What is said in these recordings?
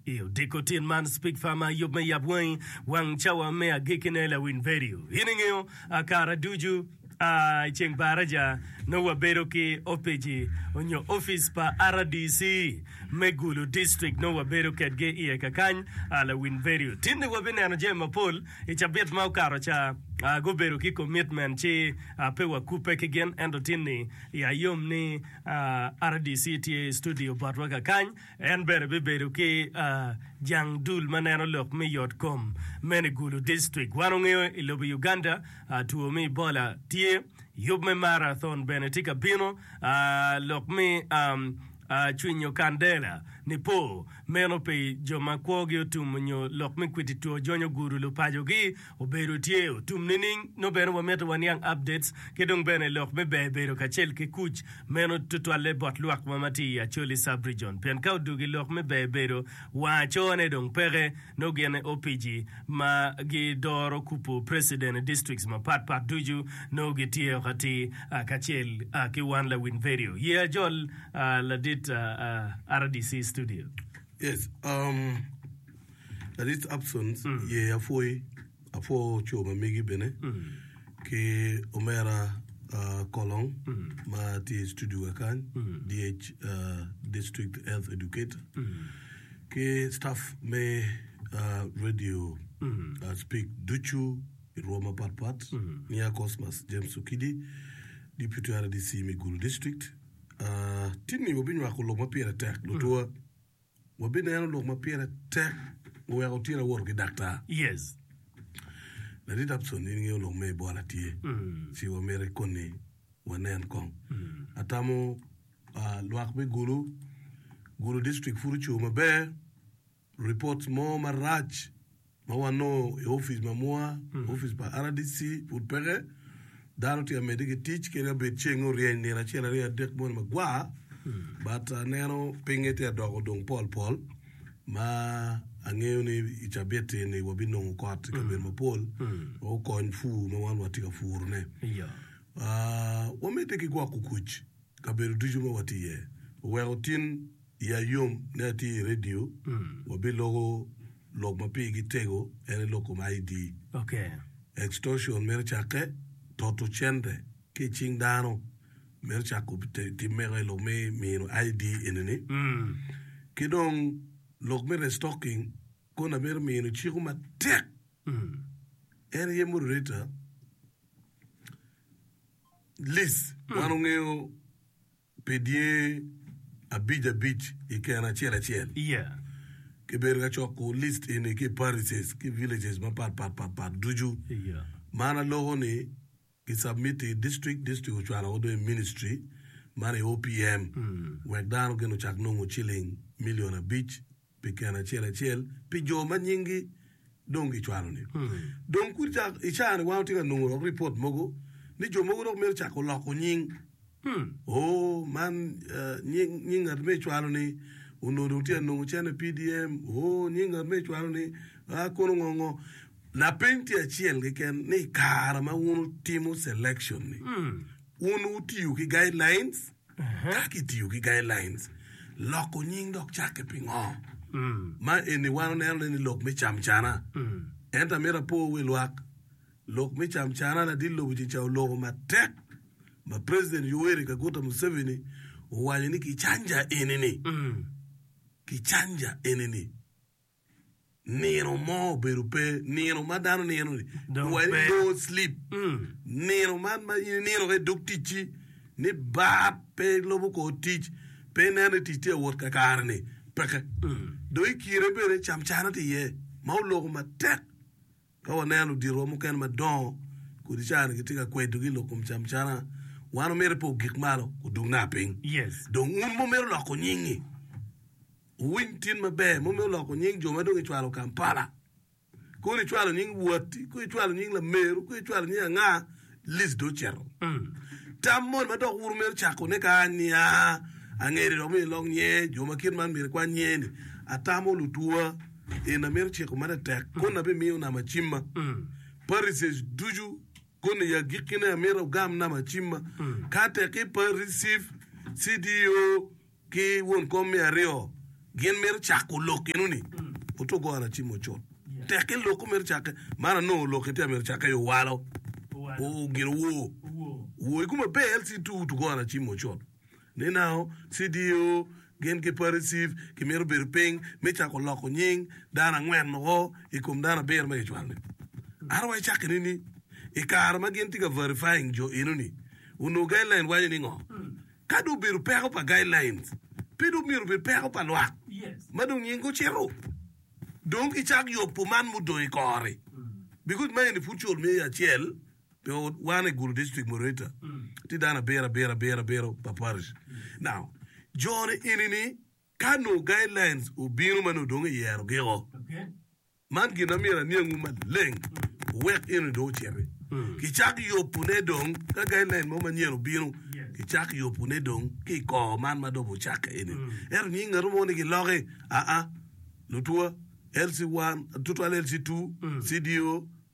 I odiko tin man, Speak Farmer ayub me yab wangi wang cawa me agikki ne lawiny vedio. In ingeyo a kara ducu a i ceng baraja nongo wabedo ki opici onyo office pa RDC me Gulu district nongo wabedo kedgi iye kakany a lawiny vedio. Tin ni wabi neno jami mapol i cabit ma okato ca a gubedo ki commitment ci a pe wa kupe ki gin ento tin ni ya yom ni a RDC tye i studio botwa kakany En bene bibedo ki jang dul ma neno lok me yotkom mene i Gulu District. Wan ongeyo i lobo Uganda two me Ebola tye, yub me Marathon bene tye ka bino, lok me cwinyo kandela, nipo, meno pi jo ma kwogi otum nyo lok me kwiti two jonyo gudu lupacogi Obedo tye otum nining? Nongo bene wamito waniang updates ki dong bene lok me ber bedo kacel ki kuc meno tutwalle bot lwak wa ma tye i Acholi Sub-Region pien ka odwogo i lok me ber bedo wang acone dong peke nongo gin aye opici ma gi doro kupu President i districts mapat pat ducu nongo gi tye o ka tir kacel ki wan lawin vedio ye ajol ladit rdc studio. Yes, um. Ladit Upsons ye apwoyi, apwo co ma megi bene ki omera ah, Kolong ma tye i studio wa kany, DH, ah, District Health Educator. Ki staff me ah, radio ah, Speak ducu i rwom mapat pat, Nia Cosmas, James Okidi, Deputy RDC me Gulu District. Ah, tinni wabinywako lok ma pire tek, lutwa. Wabineno lok ma pire tek guweko otyeno awoto ki daktar. Yes. Ladit Upson, in ingeyo lok me Ebola tye, ci wamiti koni wanen kong. Atamo ah, lwak me Gulu, Gulu district pud oco maber, reports mo marac ma wanongo i opic ma mwa, opic pa RDC pud peke, dano tye ka medde ki tic kadi ka bed ceng oryeny nino acel aryo adek moni magwar, but aneno pinye tye ka doko dong pol pol ma angeyo ni i cabiti ni wabinongo kot i kabedo mapol ma okony pur ma wan watye ka puro ne. Iya. Ah, wamedde ki gwoko kuc i kabedo ducu ma watye iye, oweko tin Iya yom ni atye i redio. Wabiloko lok ma pigi tego, en aye lok kom ID. Extortion mito cakke, toto cente ki i cing dano. Mito cako tim mego aye lok me mino ID enini. Ki dong lok me restocking koni amito mino ciko matek, en aye moderator, lease wan ongeyo. pi dye abic abic i keno acel acel. Kibedo ka coko list eni ki i parishes ki villages mapat pat pat pat ducu. Man aloko ni ki submit i district, district ocwalo woko dong i ministry man i OPM wek dano gin ocak nongo ciling million abic. pi keno acel acel pi jo ma nyinggi dong gicwalo-ni. Dong kudi ca i caa-ni wan watye ka nongo dok ripot mogo ni jo mogo dok mito cako loko nying. Oo, man nying, nying ngat ma icwalo-ni onongo dong tye ka nongo cene PDM. Oo, nying ngat ma icwalo-ni, aa, kono ngo ngo. Lapeny tye acel keken ni i kare ma wun wutimo selection-ni, wun wutiyo ki guidelines? Ka kitiyo ki guidelines loko nying dok cakke pingo? Ma eni wan oneno ne ni lok me camcana. Ento amito apo wi lwak, lok me camcana ladit lobo ci ca oloko matek ma President Yoweri Kaguta Museveni owaco ni kicanja eni ni, kicanja eni ni. nino mo obedo pe, nino ma dano nino-ni, Dong weri pe. no sleep. Nino man ma in inino ka idog ticci, ni bat pe ilobo kor tic, pe ineno ni tic tye ka wot kakare-ni, peke. Dong i kine bene camcane tye iye ma oloko matek. Ka waneno luditwa mukene madongo kodi cani gitye ka kwedo ki lok kom camcana, wan omyero pe ogik malo, odug naka piny. Yes. Dong un ma omyero loko nyingi, Wuwiny tin maber, momme oloko nying jo ma dong icwalo Kampala. Kore icwalo nying watti, kore icwalo nying lameru, kore icwalo nying anga, list dong ocito. Tam moni ma dok wuru mito cakone ka anya? Angeri dok myero ilok nye, jo ma kit man myero ikwan nye ni, Atamo lutwa, en amito ciko ma tetek, koni abimiyo nama cimma. Parises ducu, koni i agikkine amito ogam nama cimma. Ka tek i parisif, CDO, ki won kom me aryo gin mito cako lok eno ni oto goro acim ocot tek ki loko mito cake man anongo lok ite mito cake yo walo o gin owo owo i kuma be lc tu oto goro acim ocot ni nao cdo gin ki pariciv ki mito bedo ping me cako loko nying dano angwen moko i kom dano abiro ma kicwalo ni aro wa icake ni ni i kare ma gin tika verifying jo eno ni onongo guideline waco ni ngo Ka dong obedo peko pa guidelines, pe dong myero obed peko pa lwak ma dong nying gucito. Dong kicak yok pu man mudong i kor-ri, because ma eni pud col me acel pi wan i Gulu District Moderator, tye dano abiro abiro abiro abiro pa Parish. Now, jo-ni eni ni ka nongo guidelines obino ma nongo dong iyerogio, Man gin ma myero aniangwu maleng wuwek eno dong ociti. Kicak yubune dong, ka guideline mo manyen obino, kicak yubune dong ki i kor man ma dong wucakke eni. Ento nying ngatu mo ni giloki, aa, lutwa, LC1, tutwal LC2, CDO,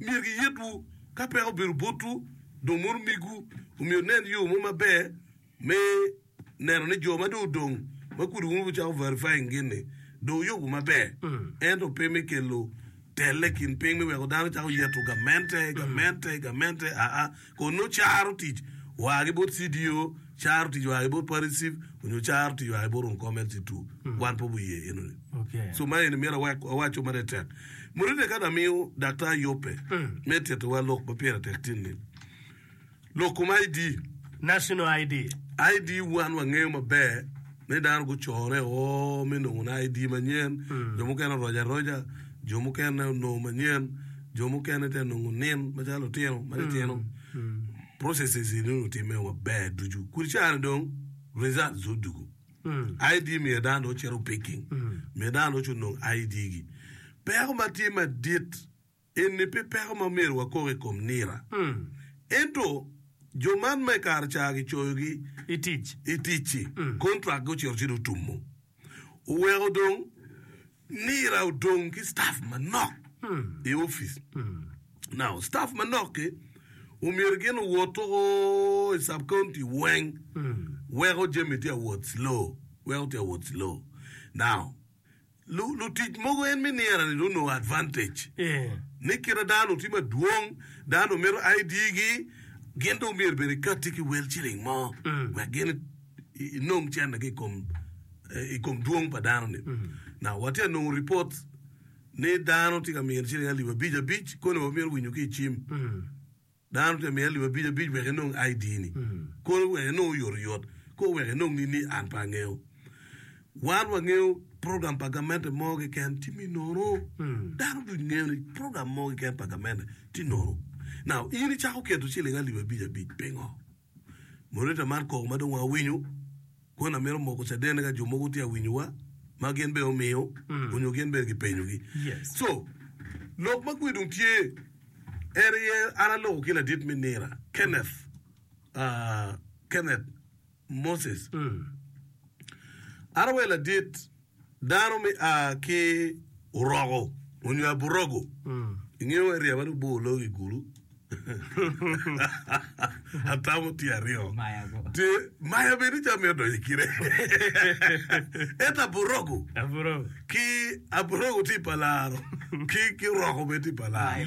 myero giyetwu ka peko obedo botwu dong mono omegwu omyero onen yo mo maber me neno ni jo ma dong odong ma kudi wun wucako verifying gin ni dong wuyubu maber ento pe me kelo telle i kin piny me weko dano cako yeto gamente gamente gamente aa Kun nongo caro tic waa ki bot CDO, caro tic waa ki bot Party Chief, onyo caro tic waa ki bot Rum Kom LC two. Wan pe wuye eno ni. Okay. So ma eni myero awek awaco ma tek tek. Murine kadi amiyo Daktar Yope me tito wa lok ma pire tek tin ni, lok kom ID, National ID. ID wan wangeyo maber ni dano gucone o me nongo ni ID manyen, jo mukene oroco aroca, jo mukene onongo manyen, jo mukene te nongo nin macalo lutino ma titino, processes eni onongo timme maber ducu. Kudi cani dong results odugu. ID miyo dano dong cito picking, miyo dano dong cito nongo ID gi. Peko ma tye madit eni pe peko ma myero wakok i kom nira. Ento jo man ma i kare ca gicoyogi I tic. i tic-ci, contract-gi ocito ci dong otummo. Oweko dong Nira odong ki staf manok i opic. Now, staf manok-ki omyero gin owot tuku i sub-county weng weko jami tye ka wot slow, weko tye ka wot slow. Now, lu- lutic mogo en me nira-ni dong onongo advantage. Yeah. Ni kit ma dano tye madwong, dano mito ID-gi, gin dong myero bene ikatti ki wel ciling mo wek gin inong cente ki i kom dwong pa dano-ni. Now, watye ka nongo ripot ni dano tye ka mito ciling alip abic abic koni wa mito winyo ki i cim. Dano tye ka mito alip abic abic wek inong ID-ni. Koni wek inong oyotoyot. Kor wek inong nini an pe angeyo. Wan wangeyo program pa gamente mo keken tye me nono. Dano ducu ngeyo ni program mo keken pa gamente tye nono. Now, in icako keto ciling alip abic abic pingo? Moderator man kok ma dong awinyo kwon amito moko cadene ka jo mogo tye awinyowa ma gin bene omiyo onyo gin bene gipenyo gi. Yes. So lok ma gwe dong tye en aye an aloko ki ladit me nira Kenneth ah Kenneth Moses. An aweyo ladit. Dano me a ki Uroko onyo Aburogo, ingeyo wai ryeba ni bor lok i gulu atamo tye aryo tye maya bene ni ca mito donyo i kine ento Aburogo ki Aburogo tye pa laro ki ki Uroko bene tye pa laro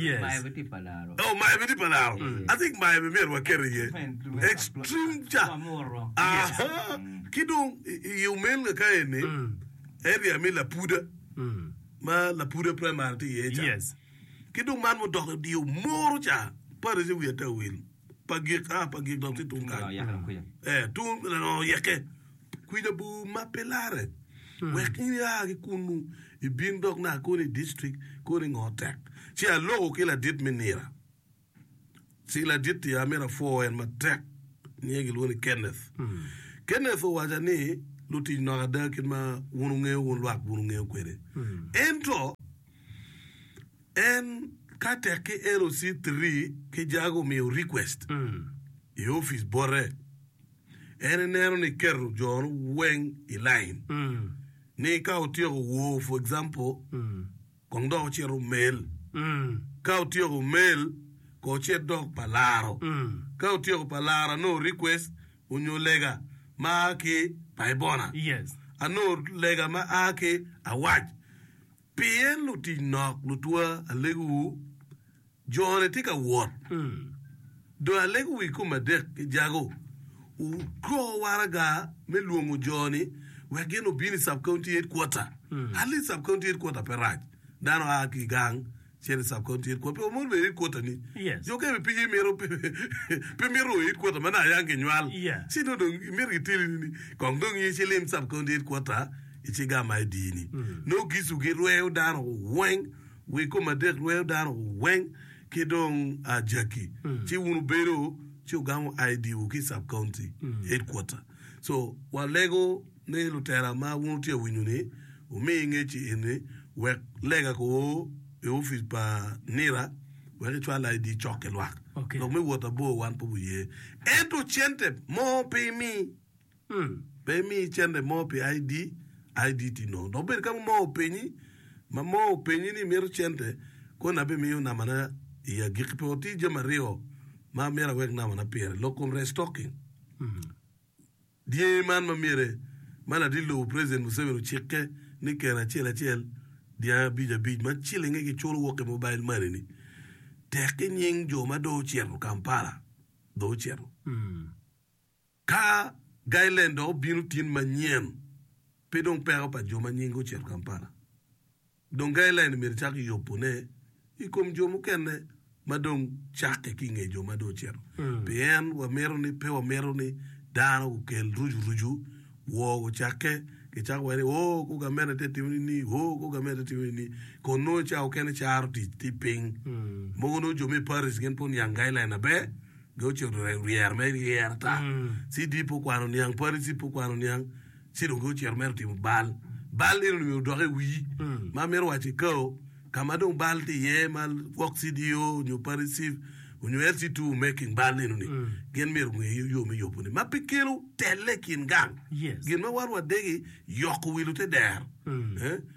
oh maya bene tye pa laro I think maya bene myero waket iye extreme ca aha. Ki dong, i omelga ka eni, area me Lapuda, ma Lapuda Primary tye iye ca, ki dong man mudok i dye Omoro ca, parish i wi Atawil, Pagik, aa Pagik dong tye tung kany, ee, tung Laoyeke, kwica bor ma pe larre. Wek in ia ki kunnu, ibin dok naka koni i district, koni i ngo tek, ci aloko ki ladit me nira. Cing ladit i Amira pwoo en matek nyinge gilwongo ni Kenneth. Kenneth owaca ni lutic nok ada kit ma wun wungeyo wun lwak wun wungeyo kwede. Ento en ka tek ki LOC three ki jago omiyo request i office bote en ineno ni keto jone weng i line ni ka otyeko woo for example kong dok ocit omel. Ka otyeko omel, kong ocit dok pa laro. Ka otyeko pa laro, anongo request onyo lega ma aa ki Paibona. Anongo lega ma aa ki Awac. Pien lutic nok, lutwa, alegu-wu, Jone tye ka wot, dong alego wi kome adek ki jago. Wugo waraga me lwongo jo-ni wek gin obin i Sub County Headquarter. Ali Sub County Headquarter pe rac. Dano a ki i gang cito i Sub County Headquarter. Pe wamono bedo i headquarter ni. Jo kene bene pinyi imito pe mito o i headquarter ma naka yang ginywal ci nongo dong imito gitilini ni kong dong in ilim Sub County Headquarter ici gam ma idi-ni. Nongo gicu girweyo dano weng. Wi kom adek rweyo dano weng ki dong ajaki ci wun wubedo ci wugamo ID wu ki sub county headquarter. So wa lego ni lutera ma wun wutye ka winyo ni wumi ngeci eni wek lega ko o i office pa nira wek icwal ID cok ki lwak. Lok me wot abor wan pe wuye ento cente mo pe imi. Ur, pe imi cente mo pi ID, ID tye nono. Dok bed ka mo ma openyi, ma mo openyi ni imito cente, koni abimiyo namana i agikki pe otir jami aryo ma myero awek namana pire. Lok kom restocking. Dyangi man ma myere ma ladit lobo President Museveni ocikke ni keno acel acel dyangi abic abic ma cilinge kiculo wok ki mobile money ni tek ki nying jo ma dong ocito Kampala dong ocito. Ka Gailen dong obino tin manyen, pe dong peko pa jo ma nyinge ocito Kampala. Dong Gailen myero ecak yubone i kom jo mukene ma dong cakke ki i nge jo ma dong ocito. Pien wamito ni pe wamito ni dano gukel rucurucu, woo gucakke, gicako waye ni, Oo, kor gamente tye ka timo nini, oo, kor gamente tye ka timo nini. Kun nongo cawa okene caro tic tye piny. Mogo nongo jo me Paris gin pud niang Gailen maber, Dong ce oryero ryero mere ryero ata. CD pe okwano niang, Pharisee pe okwano niang, ci dong ocito mere otimo bal. Bal eno ni odok i wii, ma mito waco i kao, ka ma dong bal tye iye ma gwok CDO nyo Pharisee onyo LC2 making bal eno ni, gin myero gunge yo me yobone, ma pe kelo telle i kin gang. Gin ma wan wadegi yoko wi lute dero.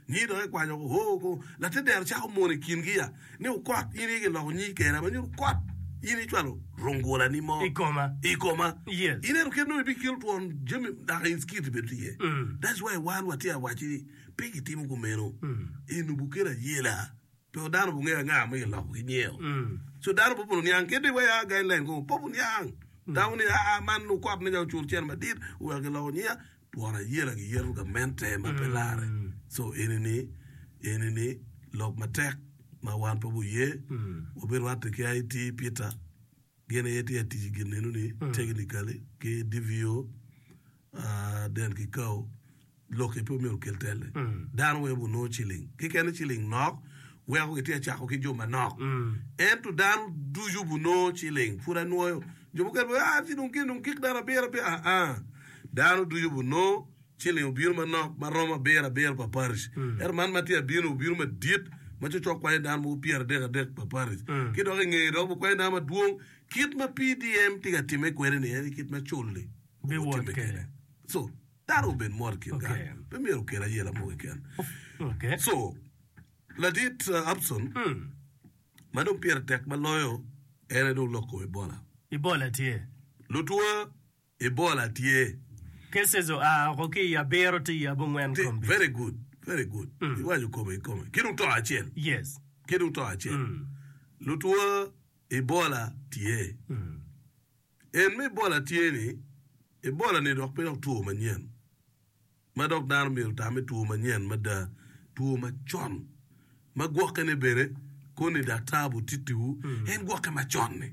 Nyi dok ikwanyo ko, oh, ko, late dero cako mono i kingi ya. ni wukot, in aye kiloko nyingi Kera ma nyuto kot, in icwalo rungulani mo i koma, i koma. Yes. Ineno kit nongo ibikelo twon jami dok in skit ibedo tye iye. That's why wan watye ka waco ni pe kitimo kumeno. Inubu kelo ayela, pe dano obingeyo anga ma giloko ki nyeo. So dano pe obin oniang kit ni waya guideline kong pe obin oniang. Dano ni aa man nongo kot me nya ocur cen madit oweko kiloko nyinga, Twon ayela giyeto gamente ma pe lare. Co eni-ni, eni-ni lok matek ma wan pe wuye. Wubirwatte ki IT, Peter, gin aye tye ka tic i gin eno-ni, technically, ki DVO, ah, Den ki Kao. Lok-ki pe omyero okel telle. Dano weng gunongo ciling. Kikene ciling nok, weko gitye ka cako ki jo manok. Ento dano ducu gunongo ciling. Pud anwoyo jo mukene pe, ah, ci dong gin dong gik dano abiro abiro, ah, ah. Dano ducu obinongo ciling obino manok ma romo abiro abiro pa paric, ento man ma tye abino-ni obino madit ma cokcok kwanyo dano mogo pyeradek adek pa paric, ki dok i ngeye dok obikwanyo dano madwong. Kit ma PDM tye ka timme kwede-ni en aye kit ma cul-li gutimme kwede. Co, dano obed mot i kin gang, pe myero okel ayela mo keken. Co, Ladit Upson, ma dong pire tek ma loyo, en aye dong lok kome bola. Lutwa I bol atye. Cases oa oko ki i abiro tye i abongwen komgi. Very good, very good. Iwaco kome i kome. Ki dong to acel. Yes. Ki dong to acel. Lutwo Ebola tye. En ma Ebola tye ni, Ebola ni dok pe dok two manyen ma dok dano myero otame two manyen mada. Two macon ma gwoke ne bene koni daktar bu titiwu en gwoke macon ni.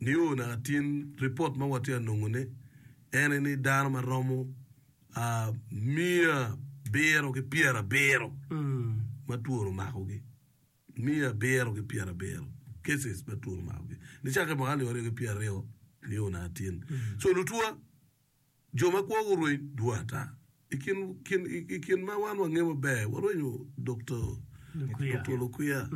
Nio naka tin ripot ma watye ka nongone ene ni dano ma romo miya abiro ki pyerabiro ma twoni omakogi, miya abiro ki pyerabiro cases ma twoni omakogi nicakke mwaka alip aryo ki pyeraryo nio naka tin. So lutwa. Jo ma kwo gurweny dwong ata. I kin ma wan wangeyo maber, warwenyo Dokta Olukwiya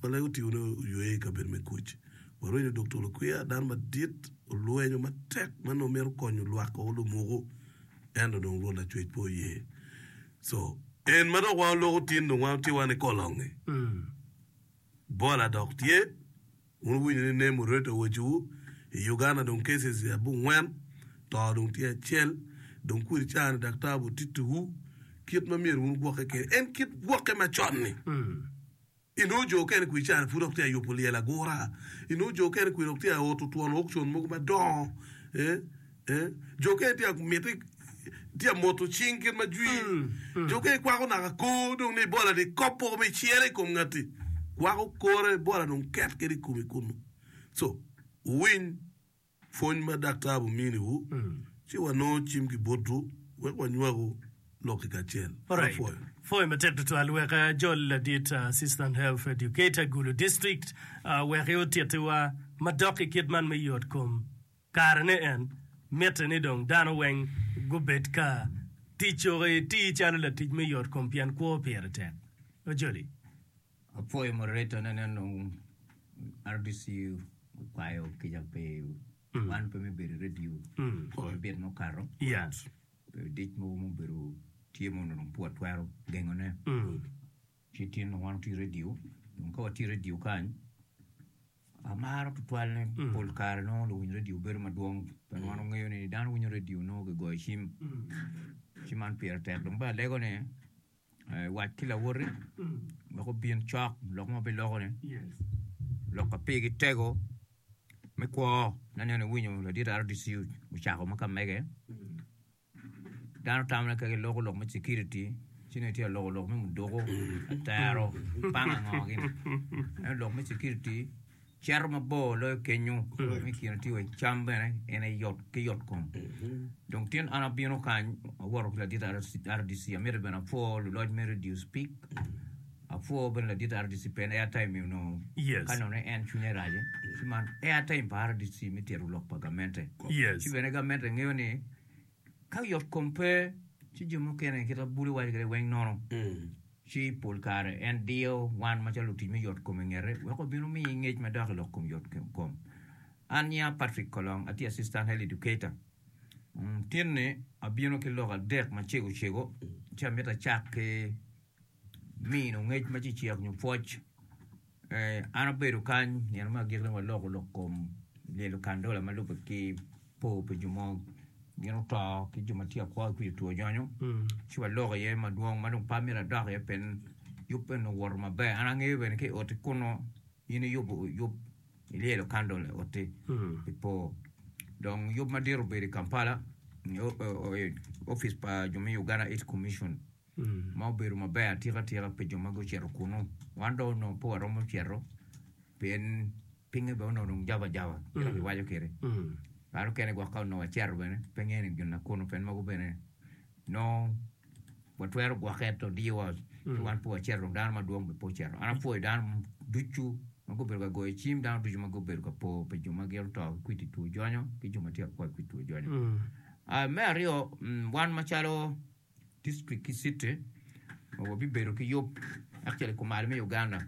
ma lege otione oyweye i kabedo me kuc. Warwenyo Dokta Olukwiya, dano madit, olwenyo matek ma nongo mito konyo lwak o lumuku, ento dong Rwot Lacwec pe oye. Co en ma dok wan oloko tin dong wan watye wani kolonge, bola dok tye. Wun wuwinyo ni name oreto awaciwu i Uganda dong cases abongwen, to dong tye acel, dong kweri caa ni daktar bu tittu wu kit ma myero wun wugwokke kede en kit gwokke ma con ni. I nongo jo okene kweri caa ni pud ok tye ayubu lyel agura, i nongo jo okene kweri ok tye aoto twon okcon mogo madongo, eh. Jo okene tye ka miti tye ka moto cing kit ma jwi. Jo okene kwako naka kor dong ni bola ni kop poko me cere i kom ngati. Kwako kore bola dong ket kede i komi kunu. So, wuwiny pwony ma daktar bumini wu, ci wanongo cim ki botwu wek wanywagu lok i kacel. Me pwoyo. Pwoyo matek tutwal wek ajol ladit Assistant Health Educator, Gulu District, wek i otitiwa madok i kit man me yot kom. Karene en mitte ni dong dano weng gubed ka ticoki itir calo latic me yot kom pien kwo pire tek. Ocholi. Apwoyo moderator ne nen dong RDC okwayo kica pi wan pe me bedo i radio me bit ma okato pe dic mogo ma obedo tye ma onongo dong pe watwero gengo ne ci tin dong wan wati radio dong ka wati radio kany Amaro tutwal ni pol kare nongo luwiny radio bedo madwong pien wan wangeyo ni dano winyo radio nongo kigoyo cim ci man pire tek dong bene alego ni eh, wac ki lawoti wek obin cok lok ma biloko ni lok ka pigi tego me kwo ne aneno iwinyo ladit RDCU ocako ma ka mege Dano tamone kaki loko lok me security ci nongo itye ka loko lok me muduku, atero, panga ngo gin. Ento lok me security cito mabor loyo kenyo. Me i kine tye wa i cam bene en aye yot ki yot kom. Dong tin an abino kany awoto ki ladit RDC amito bene apwo luloc me radio speak Apwoo bene ladit RDC pen airtime mi onongo ka nongo en cwinye race ci man airtime pa RDC mi tito lok pa gamente ci bene gamente ngeyo ni ka yot kom pe ci jo mukene kit ma bulu waco kwede weng nono ci pol kare en diyo wan macalo lutic me yot kom ingete wek obino miyi ngec madok ilok kom yot kom. An nyinga Patrick Kolong atye Assistant Health Educator tin ni abino ki lok adek macego cego ci amito acak ki mino ngec ma cecek nyo pwoc. An abedo kany nino me agikki dong aloko lok kom lyelo kandola ma lubbe ki po pi jo ma gin oto ki jo ma tye akwo ki kwija two nyonyo ci waloko iye madwong ma dong pe amito adok iye pien yub bene onongo owoto maber. An angeyo bene ki i oti kunnu in iyubo yub ilyelo kandola i oti pi po dong yub madit obedo i Kampala i opic pa jo me Uganda Aids Commission. ma obedo maber atika tika pi jo ma gucito kunu. Wan dong onongo pe waromo cito, pien pinye bene onongo dong jaba jaba kit ma kiwaco kwede. Kare mukene gwok ka onongo wacito bene, pe ngeyo ni gin nakunu pien mogo bene nongo watwero gwokke ento odiyowa ci wan pe wacito dong dano madwong bene pe ocito. An apwoyo dano ducu ma gubedo ka goyo cim, dano ducu ma gubedo ka po pi jo ma gin oto ki kwidi two jonyo ki jo ma tye ka kwai kwidi two jonyo. Me aryo, wan macalo District ki city ma wabibedo ki yub actually kumalo me Uganda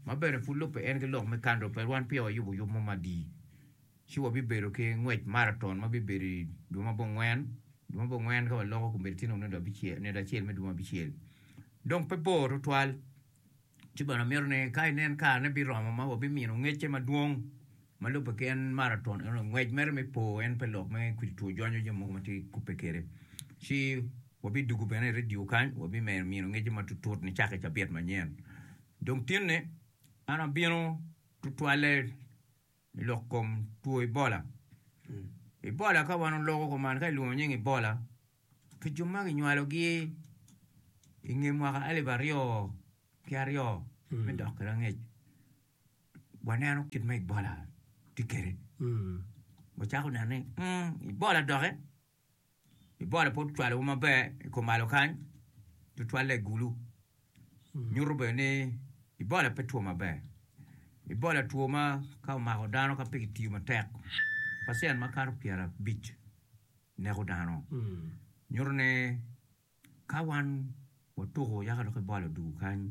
ma bene pud lubbe en ki lok me country pe wan peya wayubo yub mo madi ci wabibedo ki ngwec marathon ma bibedo i dwe ma bongwen dwe ma bongwen ka waloko komiti tye nongo nino abicel nino acel me dwe ma abicel dong pe bor tutwal Ci bene amito ni ka inen karene biromo ma wabimino ngecce madwong ma lubbe ki en maraton eno, ngwec mere me po en pe lok me kwidi two jwanyo jami mogo ma tye kubbe kwede. Ci wabidugu bene i redio kany, wabimedo mino ngecce matutut nicako i cabit manyen. Dong tinni an abino tutwalle. I lok kom two Ebola, Ebola ka wan oloko kuman ka ilwongo nying Ebola pi jo ma kinywalogi i nge mwaka alip aryo ki aryo me dok ki rangec, waneno kit ma Ebola tye kwede, wacako neno ni Ebola dokke. Bibola pud cwalowa maber i kumalo kany, tutwalle i gulu. Nyuto bene ni Ebola pe two maber. Ebola two ma ka omako dano ka pe kitiyo matek, pacent makato pyerabic neko dano. Nyuto ni ka wan watuko yaka dok Ebola odugo kany,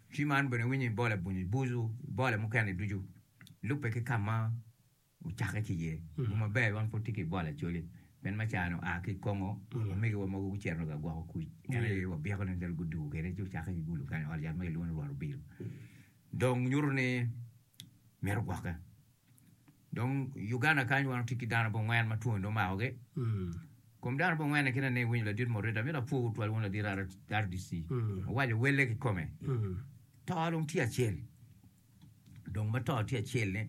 Ci man bene iwinyo i bole bunyu, i bucu, i bole mukene ducu, lubbe ki ka ma wucakke ki iye. Lum maber weng pud tye ki i bole Acholi, pien ma caa-ni oa ki i Kongo, omegiwa mogo gucito dong ka gwoko kuc. En aye wabyekone kadi gudugo kwede ci wucakke ki gulu kany i ot yat ma kilwongo ni Rwot Obilo. Dong nyuto ni mito gwokke. Dong i Uganda kany wan watye ki dano bot ngwen ma twoni dong omako gi kom dano bot ngwen kine ni winyo ladit mo rita mito apwo twal wun ladit RDC owaco welle ki kome to dong tye acel dong ma to tye acel ni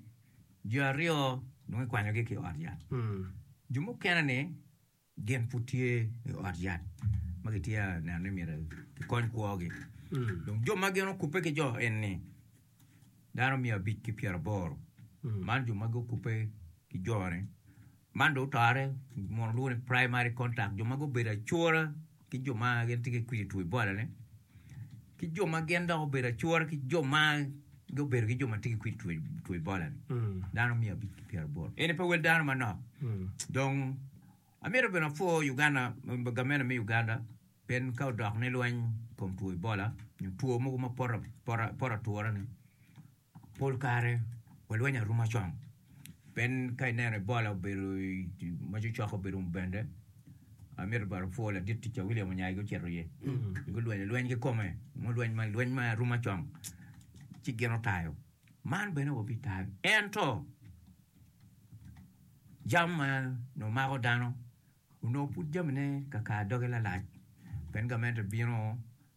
jo aryo dong ikwanyo gi ki ot yat jo mukene ni Gin pud tye i ot yat ma kitye ka neno ni myero kikony kwogi. Dong jo ma gin okubbe ki jo eni dano miya abic ki pyeraboro. Man jo magi okubbe ki jone. Man dong otore mono lwongo ni primary contact, jo ma gubedo acora. ki jo ma gin tye ki kwidi two Ebola-ni, ki jo ma gin dok obedo acura ki jo ma gubedo ki jo ma tye ki kwidi two, two Ebola-ni, dano miya abic ki pyeraboro. Eni pe wel dano manok. Dong amito bene apwo Uganda, gamente me Uganda, pien ka odok ni lweny i kom two Ebola, nyo two mogo ma poto, poto, poto atura-ni, Pol kare walweny aruma cong. Pien ka ineno Ebola obedo ma cocoko obedo mubende, amito bwot opwo ladit tica William Onyaige ocito iye. Gulwenyo lweny kikome, nongo lweny man lweny ma aruma cong. Ci gin otayo. Man bene wabitayo. Ento jam ma nongo mako dano onongo pud jamine kakar doge lalac. Pien gamente bino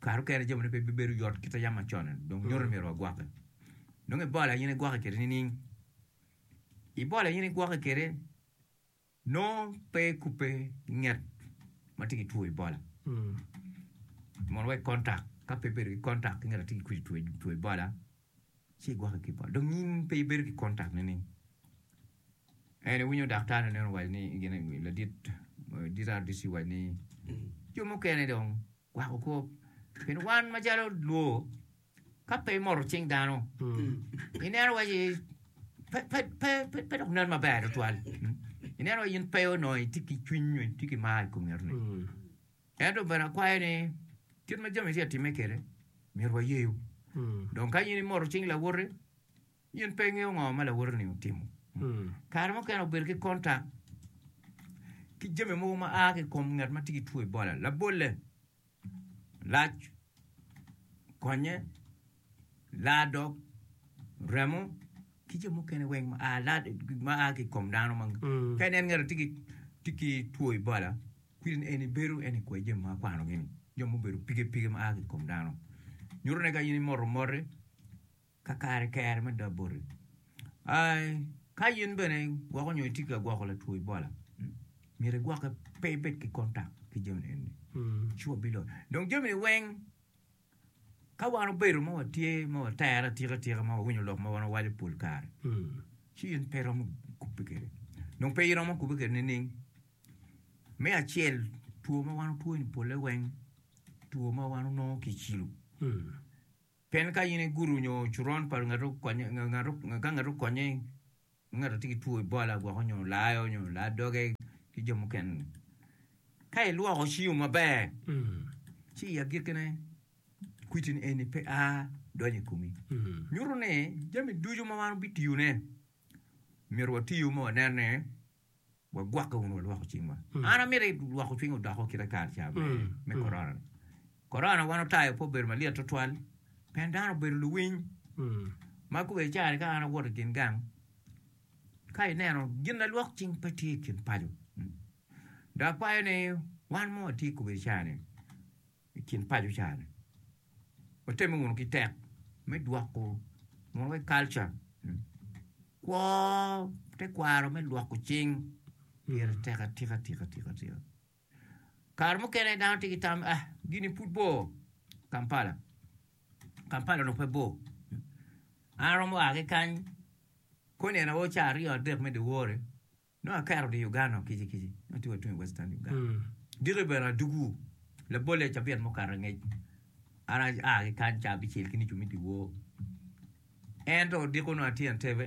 Kare mukene jo moni pe bibedo yot kit ma yam macon-ni dong nyuto ni myero wagwokke. Nongo ibolle aye in igwokke kwede nining? Ibolle aye in igwokke kwede nongo pe ikubbe i nget ma tye ki two Ebola. Mono wa i kontak, ka pe ibedo ki kontak ki ngat ma tye ki two Ebola, Ci igwokke ki bot. Dong in pe ibedo ki kontak nining? En iwinyo daktar ni neno waco ni gin ladit DRDC waco ni jo mukene dong gwako kop. Pien wan macalo lwo ka pe imoto cing dano ineno waci pe pe pe pe pe dok nen maber tutwal. Ineno waci in pe onongo itye ki cwiny nyo itye ki mar i kom ngatoni. Ento bene akwayo ni, kit ma jami tye ka timme kwede, myero wayeyu. Dong ka in imoto cing lawoti, in pe ingeyo ngo ma lawoti-ni otimo. Kare mukene obedo ki kontak ki jami mogo ma a ki i kom ngat ma tye ki two Ebola, labolle, lac, konye. ladok, remo, ki jo mukene weng ma a ki i kom dano. Ka inen ngat tye ki two Ebola, kwedini en ibedo en ikwo jami ma akwanogi-ni, jo mubedo pige pige ma a ki i kom dano. Nyuto ni ka in imoto moti, kakare kere me dog boti. Ka in bene igwoko nyo itye ka gwoko latwo Ebola, myero igwokke pe ibed ki kontak ki jami eni. Sure biloyo. Dong jamini weng. Ka wan obedo ma watye ma watere atika tika ma wawinyo lok ma wan wawaco pol kare, ci in pe iromo kubbe kwede. Dong pe iromo kubbe kwede nining? Me acel, two ma wan otwo-ni polle weng two ma wan onongo ki i cilo. Pien ka in igudo nyo coron pa ngat okonye, ka ngat okonye ma ngato tye ki two i bola gwoko nyo layo nyo laa doge ki jo mukene ni ka ilwoko cingo maber ci i agiki ne kwiti ni eni pe a donyo i komi nyuto ni jami ducu ma wan wabitiyo ne myero watiyo ma wanen ni wagwokke wunu walwoko cingwa. An amito ilwoko cwiny odoko kite kare ca me me korona-ni. Korona wan otayo pe obedo malyet tutwal pien dano obedo luwiny ma kobedi i caa-ni ka an awoto i gin gang ka ineno gin lalwok cing pe tye i kin paco dok akwayo ni wan ma watye kobedi i caa-ni I kin paco cani, watemme wunu ki tek me dwoko mono kalca kwo tekwaro me lwoko cing pire tek atika tika tika tika. Kare mukene dano tye ki tam ni ah gini pud bor Kampala, Kampala onongo pe bor an aromo a ki kany koni en aye ca aryo adek me dyewor-ri. Nongo aketo dye Uganda kici kici ma tung atunga i Western Uganda. Diki obedo adwogi labolle cabit mukato angec an aa ki kany ca abicel ki nicu me dyewor. Ento odiko onongo atye Entebbe,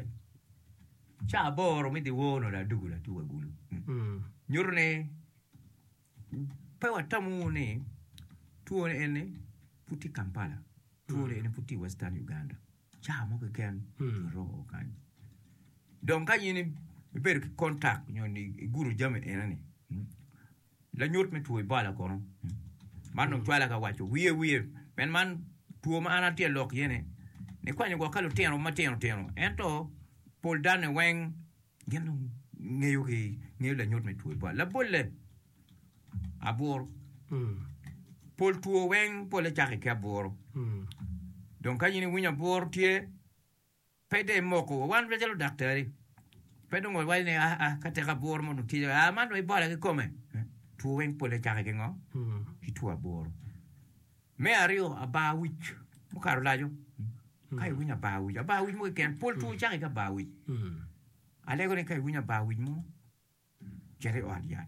ca aboro me dyewor onongo dong adwogo latuk agulu. Nyuto ni Pe watamo wunu ni two ni eni pud tye i Kampala, two ni eni pud tye i Western Uganda, cawa mo keken giromo o kany. Dong ka in ibedo ki contact nyo ni igudo jami eno ni, lanyut me two Ebola kono, man dong cwala ka waco wiye wiye, pien man two ma an atye lok iye ni, nikwanyo gwok ka lutino matino tino, ento pol dano ni weng Gin dong ngeyo ki ngeyo lanyut me two bwal labolle aburu. Pol two weng pole cake ki aburu. Dong ka in iwinyo aburu tye, pe dong imoko wa. Wan macalo ludaktari, pe dong wawaco ni aa aa ka tek aburu mo dong tye calo aa man dong ibola kikome. Two weng pole cake ki ngo? Ki two aburu. Me aryo, abar wic mukato laco. Ka iwinyo abar wic, abar wic mo keken, pol two cake ki abar wic. Alego ni ka iwinyo abar wic mo, cit i ot yat.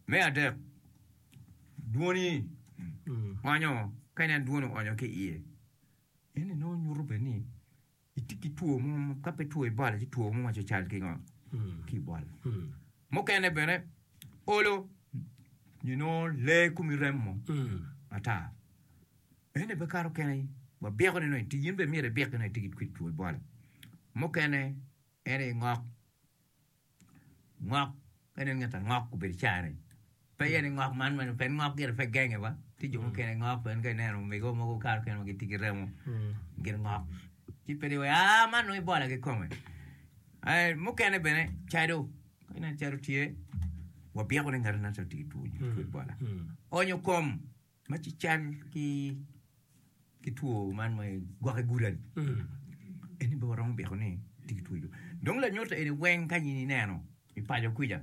Me adek, dwoni onyo, ka inen dwoni onyo ki iye, eno nongo nyuto bene ni Itye ki two mo, ka pe two Ebola ci two mo ma cal ki ngo? Ki Ebola. Mukene bene olo nyo nongo lee komi remmo ata. Ene pe kato kene wa biko ni nongo in bene myero ibik ki nongo itye ki two Ebola. Mukene ene ngok Ngok, ka ineno ngat angok obedo i caa-ni, pe iye ni ngok man mene pe, ngok gire pe genge ba, tye jo mukene ngok en ka ineno omigo mogo okato kene ma gitye ki remo, gire ngok, ci pe dong iweko, aa man dong ibola ki kome. Eh, mukene bene cado, ka ineno cado tye, wabiko ni ngati ngat-ti otye ki two bola. Onyo kom. Ma ci cal ki ki two man ma gwaki gurani eni bene waromo biko ni tye ki two jo dong lanyuto eni weng ka in ineno i paco kwica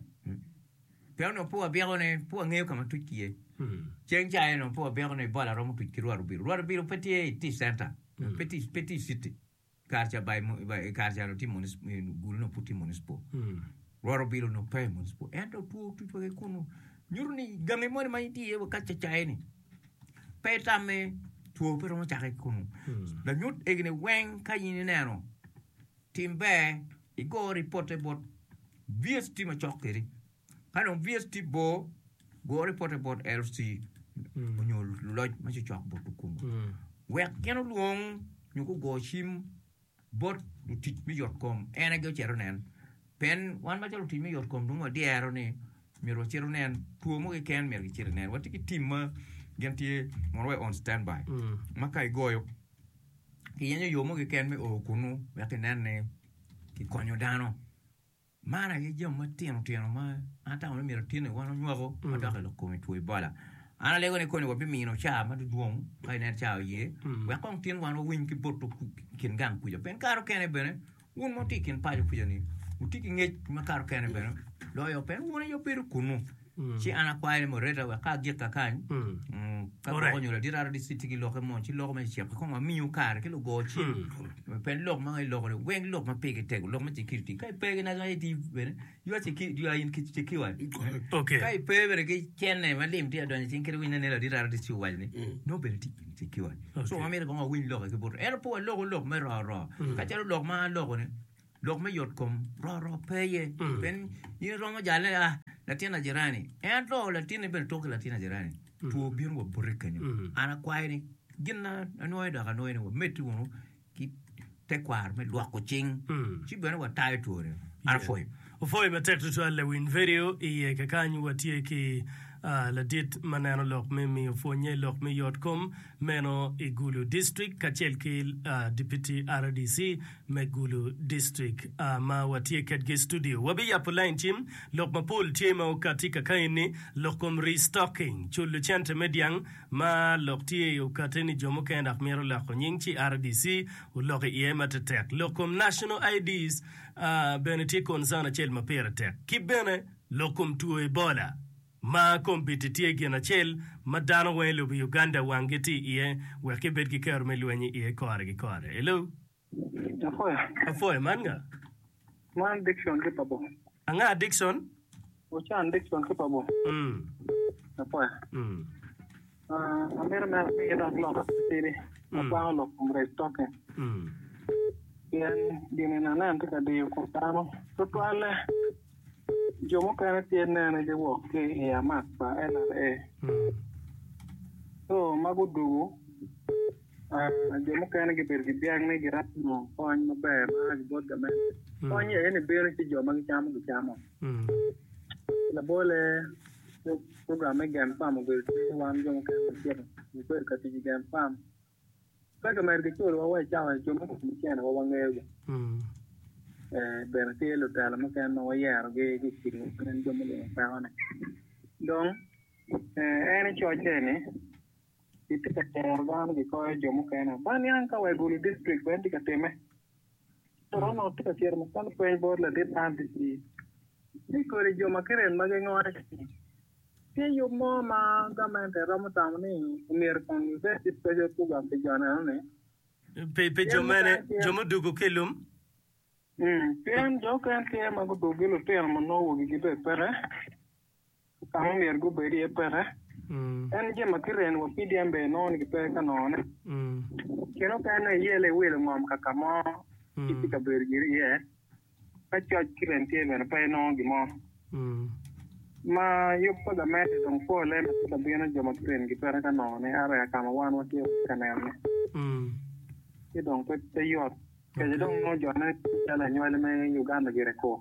pe onongo pe wabiko ne pe wangeyo ka ma tuc ki iye ceng ca eno pe wabiko ni bola romo tuc ki rwot obilo rwot obilo pe tye i tic center pe tye i city kare ca by i kare ca tye gulu nongo pud tye municipal rwot obilo nongo pe municipal ento two otutwa ki kunu nyuto ni gangi moni ma itye iye wa ka cacaye ni pe itamme two pe romo cake ki kunu lanyut egini weng ka in ineno tim ber igo ripote bot VST macok kedi Ka dong VS tye bor, gor ripote bot LC nyo luloc ma cocok bot lukungu wek gin olwong nyo gugo cim bot lutic me yotkom. En aye ocito onen. Pien wan macalo lutic me yotkom dong wadyero ni myero wacit wunen two mo keken myero gicit ginen. Watye ki tim ma gin tye mono wa on standby ma ka igoyo kiyenyo yo mo keken me o kunu wek inen ni kikonyo dano. Man aye jami matino tino ma an atamo ni myero otin iwan onywako ma dok ilok kom itwo ibola. An alego ni koni wabimino caa ma dudwong ka inen caa oye wek kong tin wan wawiny ki boto i kin gang kuca. Pien kare okene bene wun ma wutye i kin paco kuca ni wutye ki ngec ma kare okene bene loyo pe wun aye wubedo kunu. Ci an akwayo ni Moreta wek ka agik kakany, ka gwoko onyo ladit RDC tye ki lokke mo, ci loko ma kiciko kong amiyo kare ki lugo cim, pien lok ma iloko-ni weng lok ma pigi tek, lok me security. Ka ipe ki National ID bene, you are secured, you are in secured. Ka ipe bene ki cene ma lim tye ka donyo i cing kit winyne ni ladit RDC owaco ni, nongo bene tye in secured. So wamito kong wawiny lokke ki buto. Ento pe waloko lok me ro ro, kacalo lok ma aloko-ni, Lok me yotkom roro pe iye. Pien in iromo jalle, a, latin ajerani. Ento latinni bene tok ki latin ajerani, two bino wa bote kenyo. An akwayo ni, gin ma anwoyo dok anwoyo ni wameddi wunu ki tekwaro me lwoko cing, ci bene watayo twone. An apwoyo. Opwoyo matek tutwal lawiny vedio iye kakany watye ki ladit ma neno lok me miyo pwonye lok me yotkom Meno i Gulu District kacel ki Dipiti RDC me Gulu District ma watye kedgi i studio. Wabiyappu lain cim lok mapol tye ma okatti kakaeni, lok kom restocking, culu cente me dyang ma lok tye i okatte ni jo mukene dok myero oloko nying ci RDC olok i iye matetek. Lok kom National IDs bene tye concern acel ma pire tek. Ki bene lok kom two Ebola. Ma kombeddi tye gin acel ma dano weng i lobo Uganda wanggi tye iye wek gibed ki kero me lweny iye kore ki kore. Hello. Apuya. Apuya, man nga? Man Dickson ki Pabor. Anga Dickson? Ocan Dickson ki Pabor. Mm. Apuya. Mm. Amito neno ni idok lok matidi ma kwako lok kom rec toke. Pien gin-ni na nen tye ka diyo kom dano. Tutwalle, jo mukene tye nene giwok ki i amak pa LRA. Co magu dugu, jo mukene gibedo ki byang ni giromo nongo kony maber ma a ki bot gamente. Kony aye ni bino ci jo ma gicamo gicamo. Labolle. program me gen fam obedo tic ki wan jo mukene macego mubedo ka tic i gen fam. Pe kimito kiculowa wa i cawa jo me kom cene wa wangeyogi. Bene tye lutela mukene ma wayerogi ki i kidiwa kadi jo mulimo pekone. Dong en i cocce ni kitye ka tero dano kikoyo jo mukene. Ba niang ka wa i Gulu district bene tye ka timme. Roma watye ka cito ma kwan pweny bot ladit man pi ci ni kodi jo ma kiryem ma gingone ki-ni. Tye yub mo ma gamente romo tamo ni omyero kong gibed ki pwoco kuga pi jo neno-ni? Pi jo mene? Jo mudwogo ki i lum? Pien jo okene tye ma gudwogo ki lutino ma nongo wogigi pe peke. ka ma myero gubed iye peke. Ento jami ma kireno wa pigi en bene inongo ni gipe ka nongone. Kine mukene iyelle iwilo ngom ka ka mo ci itye ka bedo giri iye. Ka coc ki rem tye bene pe inongo gin mo. Ma yub pa gamente dong polle ma tye ka bino jo ma kireno gipeke ka nongone a reka ka ma wan watye ka nenone. Ci dong pe yot. Kece dong inongo jone calo anywali me Uganda gire kur.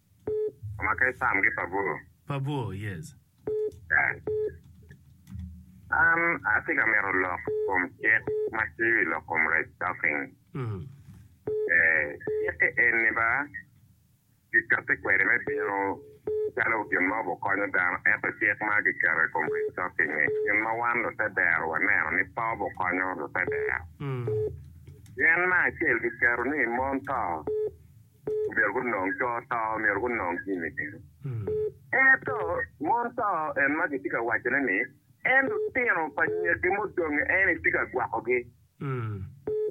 Omake Sam ki Pabur. Pabur, Yes. Dang. An atye ka mito lok kom cik ma tye wi lok kom restocking. Mm. Ee, cik-ki eni ba, Kikatti kwede me bino calo gin ma obukonyo dano, ento cik ma kiketo i kom restocking-ngi, gin ma wan lutedero waneno ni pe obukonyo lutedero. Mm. Pien ma acel kiketo ni mon to Omyero gunong co to, omyero gunong jami meno. Ento mon to en ma gitye ka wacone ni en lutino pa nyagi mudong en aye tye ka gwakogi,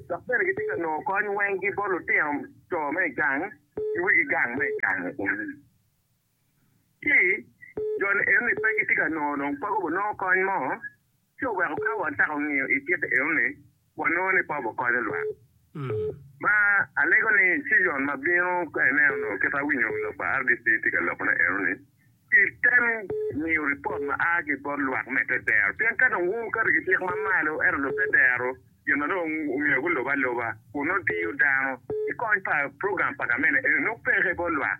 dok bene gitye ka nongo kony wenggi bot lutino co me gang ki wigi gang me gang. Ci, joni enoni pe gitye ka nongo dong peko gunongo kony mo, ci oweko ka wacako ngiyo i kite enoni, wanongo ni pe wakonyo lwak. Ma alego ni cizon ma bino ka ineno nongo kit awinyo lok pa RDC tye ka lokone enoni, ci tem miyo ripot ma a ki bot lwak me te dero, pien ka dong wun wuketo ki cik ma malo ento dong te dero gin ma dong omyero gulub aluba kun nongo diyo dano, ci kony pa program pa gamente enoni nongo peke bot lwak.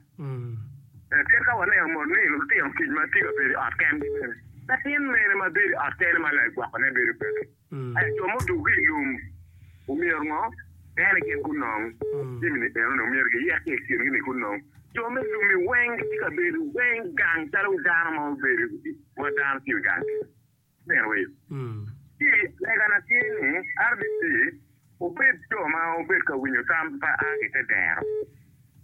Kadi ka waneno mono ni lutino kic ma tye ka bedo i ot kengi bene, latin mene ma bedo i ot kene ma lai gwokone bedo bene? Ento jo mudukke i lum omyero ngo? Pien gin gunong jami-ni enoni, omyero giyek ki i kingi ni gunong. Jo me lum-mi weng gitye ka bedo weng gang calo dano ma obedo ma dano tye i gang kene. Berwick. Ci legana tye ni, RDC obed jo ma obed ka winyo tam ma a ki te dero,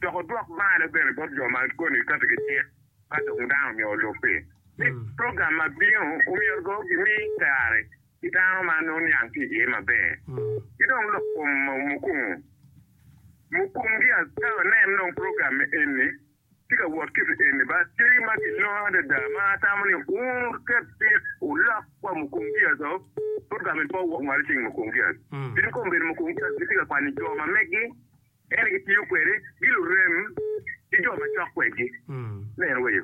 dok odwok bal bene bot jo ma koni kati ki cik ka dong dano omyero olub-bi. Ni program ma bino omyero dong gimi kare ki dano ma nongo niang tye iye maber, ki dong lok kom mukungu mukumgi. Ka wanen dong program eni Atye ka wot ki pi eni bal cing ma gilonga adada ma atamo ni wur ket cik wulok wa mukungias o, pud ka mito wok malo cing mukungias. Pien ka obedo mukungias gitye ka kwanyo jo ma megi, ento gitiyo kwede, gilurem ki jo macok kwedgi. Nen weyo.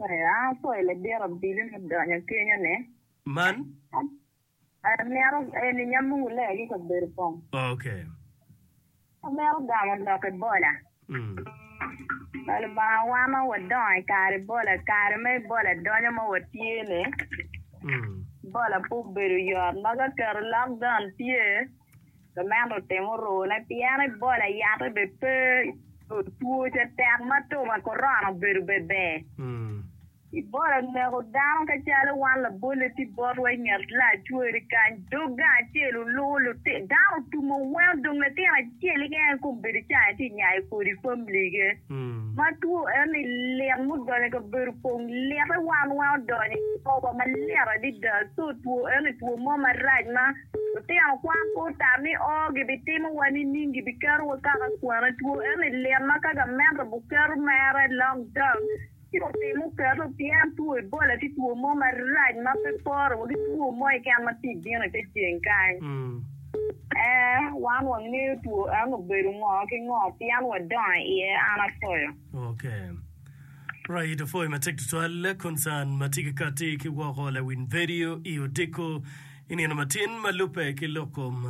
Aya, pol abiro abili me donyo kenyone. Man? Amito eni nyamo wulea ki kabedo kong. Okay. Amito gamo lok i bola. Mm. Pa Lubanga wano wadongo i kare bola, kare ma i bola donyo ma watye-ni. Mm. Bola pe obedo yot, ma ka keto lockdown tye, Pi meno timo rune pien Ebola yatte bene pe nyo two ce tek ma two pa korona obedo bene ber. Ebola oneko dano ka calo wan labolle tye botwa i nget lacweri kany dog gang acel oluko lutit dano otumo weng odong latin acel keken i kom bedo cani tye nyayo kodi family ge ma two eni lit ma odonyo kabedo kong lite wan weng odonyo i kor wa malit adada so two eni two mo marac ma Lutino kwan pe otam ni oo gibitimo wa nining, gibiketo wa kaka kwane two. Ento i lim ma ka gamente buketo mere long term, ci otim oketo pien two Ebola tye two mo marac ma pe pore wa ki two mo keken ma tye bino i te ceng kany. Ee, wan wangeyo two eno obedo ngo ki ngo pien wadongo iye an apoyo. Ok. Right, apwoyi matek tutwal. Concern ma tye ki kati ki woko lawiny vedio i odiko. I nino matin ma lubbe ki lok kom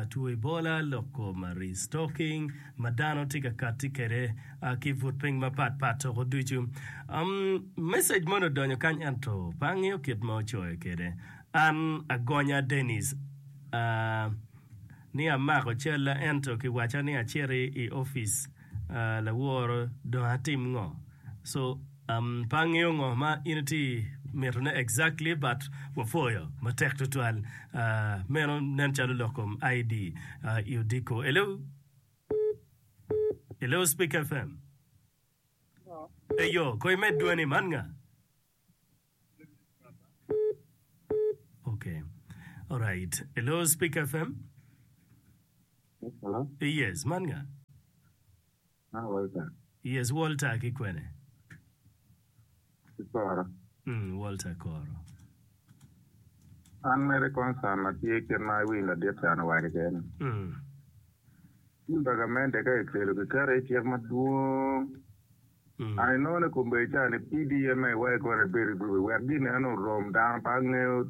two Ebola, lok kom restocking ma dano tye ka kati kwede ki but piny mapat pat toko ducu. Um, message moni odonyo kany ento pe angeyo kit ma ocoyo kwede. An agonya Dennis, uh, ni amako calla ento kiwaca ni aciti i office, uh, laworo dong atim ngo? So, Um pe angeyo ngo ma in iti mito ne exactly but wapwoyo matek tutwal uh meno nen calo lok kom ID uh i odiko. Hello Hello Speak FM Eyo ko imed dwani man nga? Okay alright Hello Speak FM Hello Yes man nga? Hi Walter. Yes Walter ki kwene? Ki koro. Mm Walter koro. An mere concern na tye kit ma iwiny ladit can owaco kene. Mm. Cin pa gamente ka ekelo kiketo i cik madwong. Mm. An inongo ni kombedi ca ni PDM ma iwaco kore ebed i group wek gin eno orom dano pa angeyo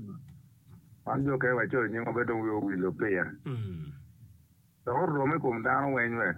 man jo kene wacoyo nyingwa be dong wiwa owil-lo piya. Mm. Dok orom i kom dano weny wek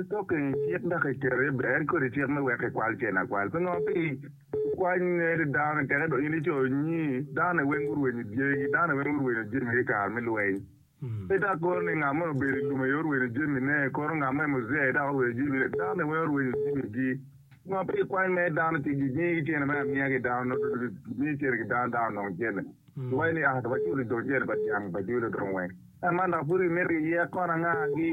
Ipokke i cik dok iketo i ber kodi cik me wek ikwal cen akwal. Pingo? Pi kwany ngeri dano-ni teke dong in ico nyi dano-ni weng gurwenyo dyegi, dano-ni weng gurwenyo jamigi i kare me lweny. Pe dok kono ni ngat moni obedo i lum aye orwenyo jamine, kono ngat mo aye muzee dok orwenyo jamine. Dano-ni weng orwenyo jamigi. Pingo pe ikwany mere dano ci ginyigi cene me amiya ki dano, nongo dong gimiyo cene ki dano, dano onongo cene? Waci ni, 'Aa, waculo i dog yeya pa dyang pa jwilo dong weng. Ento man dok pud kimito ki yek kona angagi,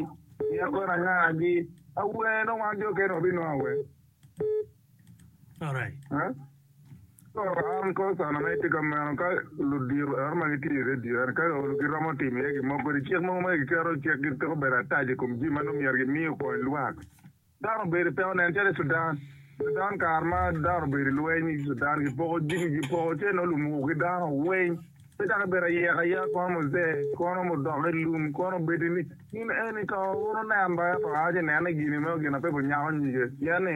yek kona angagi. Awer nongo wan jo kene wabinongo awer. Alright. Eh? So, an kor sana ma itye ka meno ka ludiro ero ma gitye i redio ero ka olo giromo timo iye gin mo kodi cik mogo ma giketo cik gitiko bedo atac i kom jami ma nongo myero gimi okony lwak. Dano obedo pe onen calo i Sudan. Sudan kare ma dano obedo i lweny i Sudan gipoko jami gipoko ce nongo lum owo ki dano weng pe dok ibedo ayek ayek kono muzee kono mudok i lum kono obedi ni in eni to wun wunen ba ento a ci inene gini meno gin ape bunyako nyige pien ni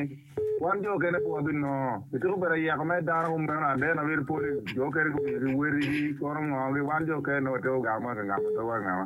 wan jo okene pe wabinongo ityeko obedo ayeko mere dano kumeno ade na bedo pol i jo okene gumiyo ki wotigi kono ngongo gi wan jo okene nongo watye kugamo ma kingamo dogwa ki ngama.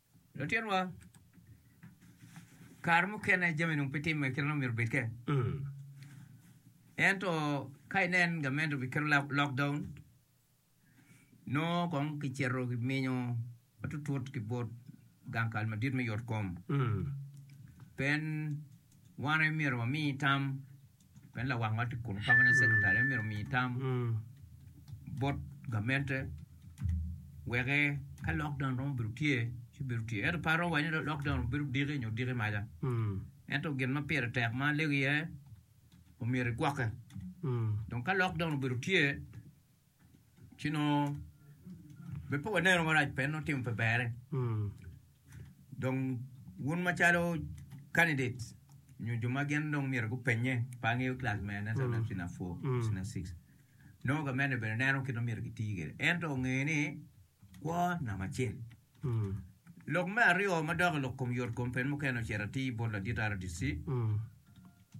Lutinwa, kare mukene jami nung pe timme kit ma myero obed ke. Ento ka inen gamente obiketo lock- lockdown, nongo kong kicito kiminyo matutut ki bot gang kal madit me yot kom. Pen wane myero wami tam Pien lawang ma tye kun kama nongo sekretari en myero omi tam bot gamente weke ka lockdown romo bedo tye ci bedo tye. Ento pe aromo waco ni lockdown obedo diki nyo diki maca. Ento gin ma pire tek ma alego iye omyero igwokke. Dong ka lockdown obedo tye ci nongo be pe waneno marac pe nongo timo pe bere dong wun macalo candidates nyo jo ma gin dong myero gupenye pe angeyo class me ane sa nafsi na four nafsi na six nongo gamente bene neno kit ma myero giti kwede ento onge ni Kwo namba acel. Lok me aryo ma dok i lok kom yot kom pen mukene ocito atir bot ladit RDC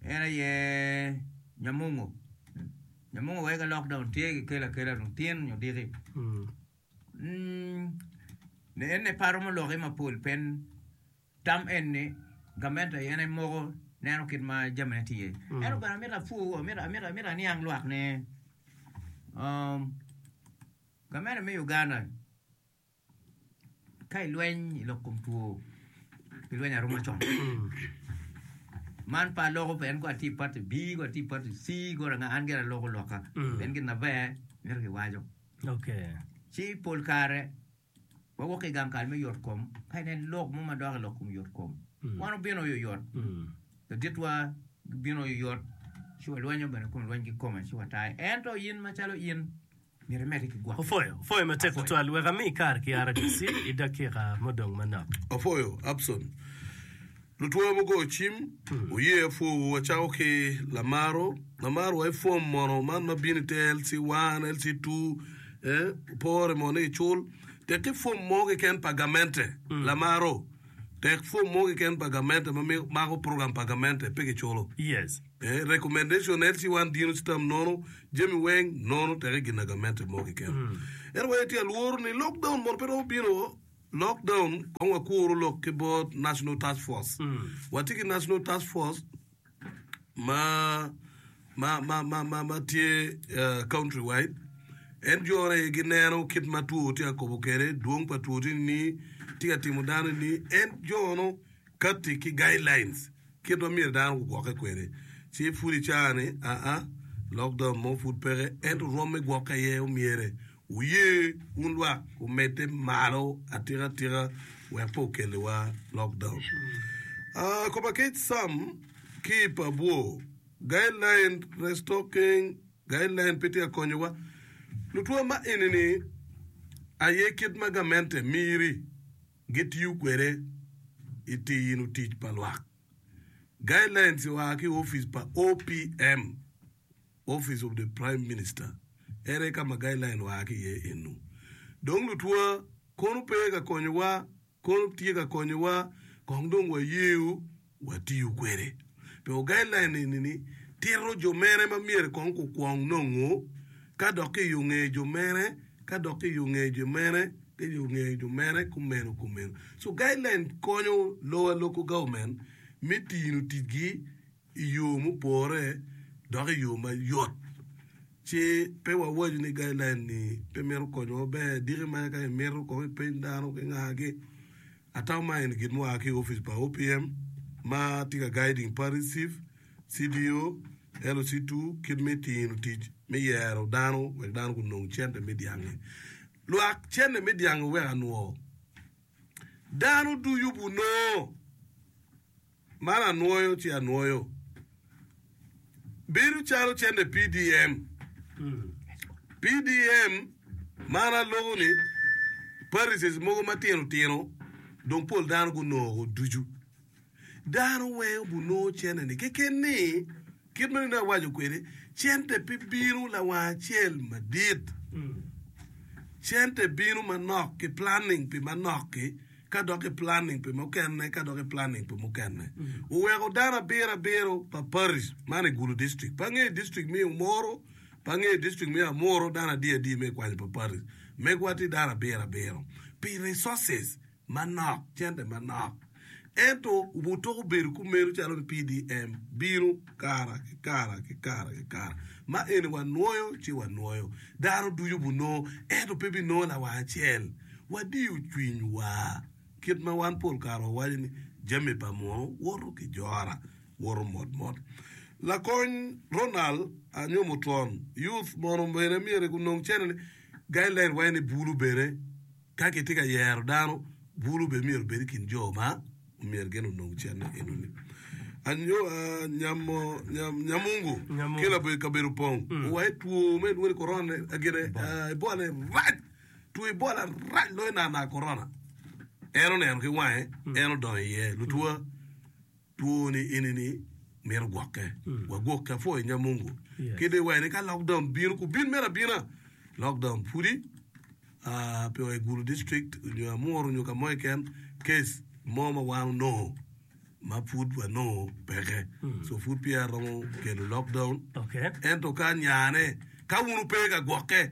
en aye Nyamungo. Nyamungo weko elok dong tye ki kelo akela dong tin nyo diki. Mm, en ne paro muloki mapol pen tam en ni gamente aye en moko neno kit ma jamine tye. Mm. Eno bene amito apu, amito amito amito aniang lwak ne. Um, Gavmenti me Uganda ka i lweny i lok kom two pi lweny arum macon man pe aloko pe en ko atye i party B ko atye i party C ko ranga an gire aloko loka pien gin na ber mito ki waco ci pol kare wa wok ki gang kal me yot kom ka inen lok mo ma dok i lok kom yot kom wan obino oyoyot laditwa gibino oyoyot ci wa lwenyo bene kun lweny ki kome ci wa tayo ento in macalo in Opwoyo, Opwoyo matek tutwal, wek ami kare ki RDC i dakika mudong manok. Opwoyo, Abson, lutwongo mugoyo cim, wuye apwowu, wacako ki Lamaro, Lamaro wa i fom mono, man ma bino ite LC one, LC two, eh, pore mono ni gicul, tek ki fom mo keken pa gamente, Lamaro, tek fom mo keken pa gamente ma mako program pa gamente, pe giculo. Yes. Ee, recommendation en ci wan dino ci tam nono jami weng nono teke ginagamente mo keken. Ento wee tye alworo ni lockdown mono pe romo bino lockdown kong wakuru lok ki bot national task force. Watye ki national task force ma ma ma ma ma, ma tye eh, country wide en jore aye gineno kit ma two tye ka kobo kwede dwong pa two tye ni tye ka timo dano ni en jono kati ki guidelines Kit ma myero dano gugwokke kwede, ci pud icaa-ni, aa, lokdom mo pud peke, ento rwom me gwokke aye omyere. Wuye wun lwak wumedde malo atika atika wek pe okelliwa lokdom. Aa, kop akec Sam ki i pa bwo, Guideline Restocking Guideline pe tye ka konyowa. Lutwa ma eni-ni aye kit ma gamente miri. gitiyo kwede i tino tic pa lwak. Guidelines oa ki opic pa OPM, Office of the Prime Minister, ere ka ma guideline oa ki iye enu. Dong lutwa kono pe ka konyowa, kono tye ka konyowa kong dong wayeyo watiyo kwede pi ogailline eni ni tito jo mere ma myero kong gukwong nongo ka dok ki yo ngeyo jo mere ka dok ki yo ngeyo jo mere ki yo ngeyo jo mere kumeno kumeno so guideline konyo lowa local government me tino ticgi i yo mupore dok i yo mayot ci pe wawaco ni guideline ni pe mito konyowa maber diki mere ka imito kong ipeny dano ki ngagi. Atamo ma eni gin mua ki i opic pa OPM ma tye ka guiding party chief, CDO, LC two kit me tino tic me yero dano wek dano gunong cente me dyangi. Lwak cente me dyangi wek anwo. Dano ducu gunoo. man anwoyo ci anwoyo bedo calo cente PDM PDM man aloko ni parises mogo matino tino dong pol dano gunoko ducu dano weng obunongo cente ni keken ni Kit ma nonei awaco kwede, cente pe bino lawang acel madit. Cente bino manok ki planning pi manok-ki, ka dok ki planning pi mukene, ka dok ki planning pi mukene. Wuweko dano abiro abiro pa Parish, man i Gulu District, pe angeyo District me Umoro, pe angeyo District me Amuru, dano adi adi me kwanyo pa Parish. Megwa tye dano abiro abiro. Pi resources. manok, cente manok. Ento wutoko bedo kumeno calo ni PDM bino kara ki kara ki kara ki kara. Ma eni wanwoyo ci wanwoyo. Dano ducu bunongo, ento pe binongo lawar acel. Wadiyo cwinywa. Kit ma wan pol kare wawaco ni, Jami pa muno woto ki jora, woto mot mot. Lakony Ronald Anyomutwon, Youth mono bene myero gunong cente ni, guideline wa eni bulu bene. Ka kitye ka yero dano, bulu bene myero obed i kin jo ma myero gin onong cente enoni. Anyowa nyamo nyamungu ki laboyo kabedo pong owaye two me lwoni korona agine ibolane rac two ibola rac loyo nana korona en oneno ki wange en odongo iye lutwa Two ni eni ni mito gwokke wa gwokke apwoyo nya mungu ki dong iwene ka lockdown bino ku bin mere abina lockdown pudi aa pe oye gulu district onyo amuru onyo kamo keken case mo ma wan onongo ma pud wa nongo peke so pud peya aromo kelo lockdown ento ka nyane ka wun wupe ka gwokke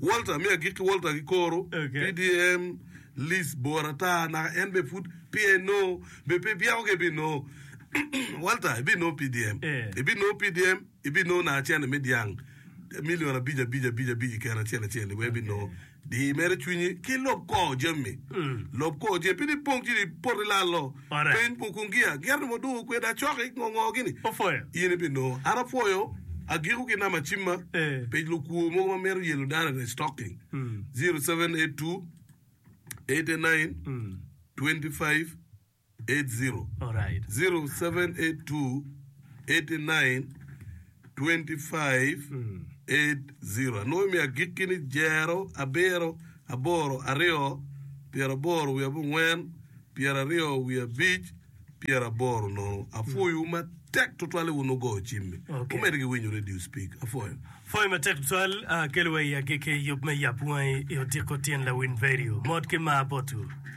Walter, me agik ki Walter ki koro, Okay. PDM, Liz bor ata, naka en be pud PNO, be pe byeko ka ibino. Walter, ibino PDM. Eh. Ibino PDM, ibino naka cente me dyang, milion abic abic abic abic ikero acel acel, iwe ibino. Di mere cwinyi, ki lob kor jami. Lob kor jami, pe ni pong ci ni poto ilalo. Peny buk kun gia, gia nongo dong okwedo acoki ki ngongo gini in ibinongo. An apwoyo agiko ki namba cimma pec lukwor mogo ma mito yelo data ne stocking 0782892580 0782892580. 25 8 0 Anongo imiyo agikki ni jero, abiro, aboro, aryo, pyeraboro wiye abongwen, pyeraryo wiye abic, pyeraboro nono. Apwoyo wu matek tutwal i wun wugo cim mi. Okay. Wumedi ki winyo radio speak. Apwoyo. Pwoyo matek tutwal, ah, kelo wa i agikki yub me yap wangi i odiko tyen lawiny radio. Mot ki mar botu.